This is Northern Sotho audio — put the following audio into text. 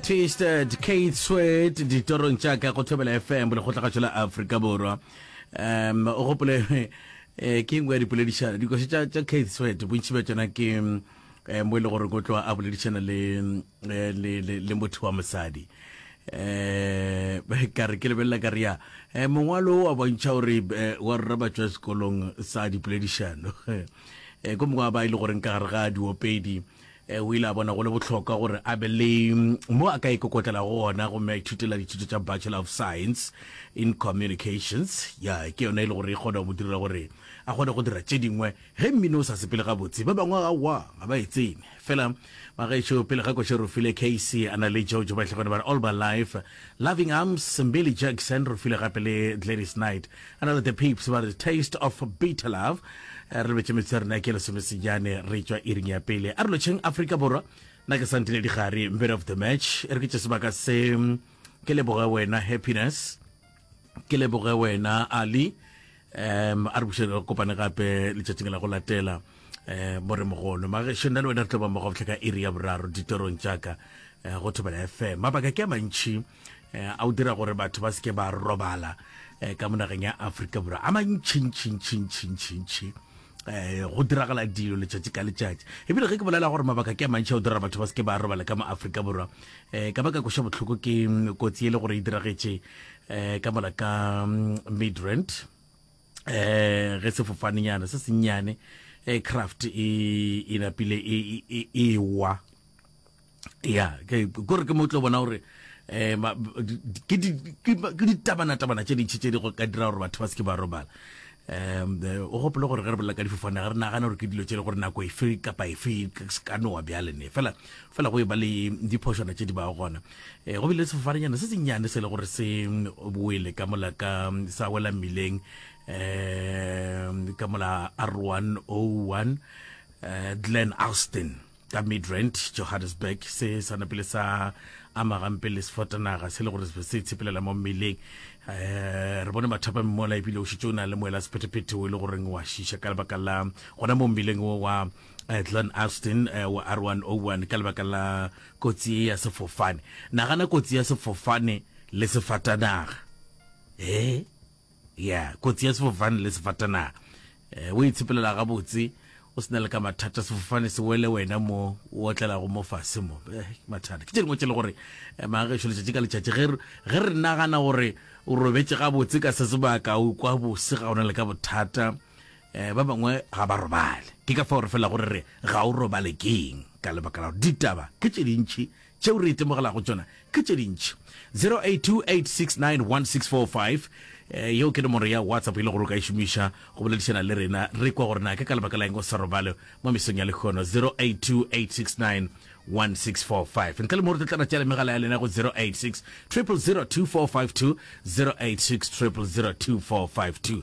Twisted Keith Sweat ditorong tša ka go thobela FM lekgotlagašo la Afrika Borwa um o gopole eh, ke engwe ya dipoledišano dikoši tša tša Keith Sweat bontši bja tšona ke eh, mo e le gore ko tloa a boledišana le, eh, le, le, le motho wa mosadi eh ka re ke lebelela ka rea eh mongwalo wa bontšha gore eh, wa rra ba tswa sekolong sa dipoledišano eh ko mongwe wa ba e le goreng ka gare ga diopedi Ee, o ile a bona go le bohlokwa gore a be le mo a ka ikokotlelago gona gomme a ithutela dithuto tša Bachelor of Science in Communications. Ya, ke yona e le gore e kgona go mo direla gore a kgone go dira tše dingwe. Ge mmino o sa sepele gabotse, ba bangwe aowa ga ba e tsene. Fela ba gešo, pele ga Košerofile, Casey a na le Jojo ba hlakane ba re All My Life, Loving Arms, Mbili Jackson, re file gape le Gladys Knight. Re na le The Peeps ba re Taste of Bitter Love. Re lebetše metsotso ya rena ke lesomesenyane re tšwa iring ya pele. A re lotšheng Afrika Borwa, nna ke Santile Digare, man of the match. E re ke tše sebaka se, ke leboge wena Happiness, ke leboge wena Ali, um a re buše re kopane gape letšatšing la go latela um mo re mogono magešo nna le wena re tlo ba mmogo botlhe ka iri ya boraro ditorong jaaka eh, go thobela fm mabaka ke a mantšhi eh, a o dira gore batho ba seke ba robala eh, ka monageng ya aforika borwa a mantšhintšhintšhintšhintšhintšhi eh go diragala dilo letšatši ka letšatši ebile ge ke bolela gore mabaka ke a mantšhi o dira batho ba se ke ba robala ka mo Afrika borwa eh ka baka koša bohloko ke mm, kotsi e le gore e diragetše eh ka mola ka mm, midrand eh ge sefofanenyana se sennyane eh craft e e napile e, e, e, e wa ya kore ke mo tlo bona gore um ke ditabanatabana tše dintšhi tše di go ka dira gore batho ba seke ba robala um o gopole gore ge re bolela ka difofane ga re nagana gore ke dilo tše le gore nako efe kapa efe ka nowa bjalene fela fela go e ba le diphošwana tše di ba gona um go bile sefofanenyana se sennyane se le gore se boele ka mola ka sa wela mmileng um ka mola r one o one um glen alston ka midrand johannesburg se sa napele sa ama gampe le sefotanaga se le gore se tshepelela mo mmeleng um re bone mathapa mmola ebile o šitse o na le moela sephetephete o e le goreng wa šiša ka lebaka la gona mo mmeleng o wa eh, glen austin eh, wa r 101 ka lebaka la kotsi e ya sefofane nagana kotsi ya sefofane le sefatanaga e Yeah, kotsi ya sefofane le sefatanaga. O e tshepelela gabotse, o se na le ka mathata, sefofane se wele wena mo o otlelago mo fase mo. Eh, ke mathata. Ke tše dingwe tše e le gore, mang gešo, letšatši ka letšatši, ge re, ge re nagana gore o robetše gabotse ka se sebaka, o ikwa bose ga o na le ka bothata. Eh, ba bangwe ga ba robale. Ke ka fao re felago re re, Ga o robale ke'ng? Ka lebaka la gore ditaba ke tše dintši Tšeo re itemogelago tšona ke tše dintši. 0828691645, yeo ke nomoro ya WhatsApp e le gore o ka e šomiša go boledišana le rena, re kwa gore na ke ka lebaka la eng o sa robale mo mesong ya lekgono. 0828691645, ntle le mo re tlo tlana tšea le megala ya lena go 0860002452, 0860002452.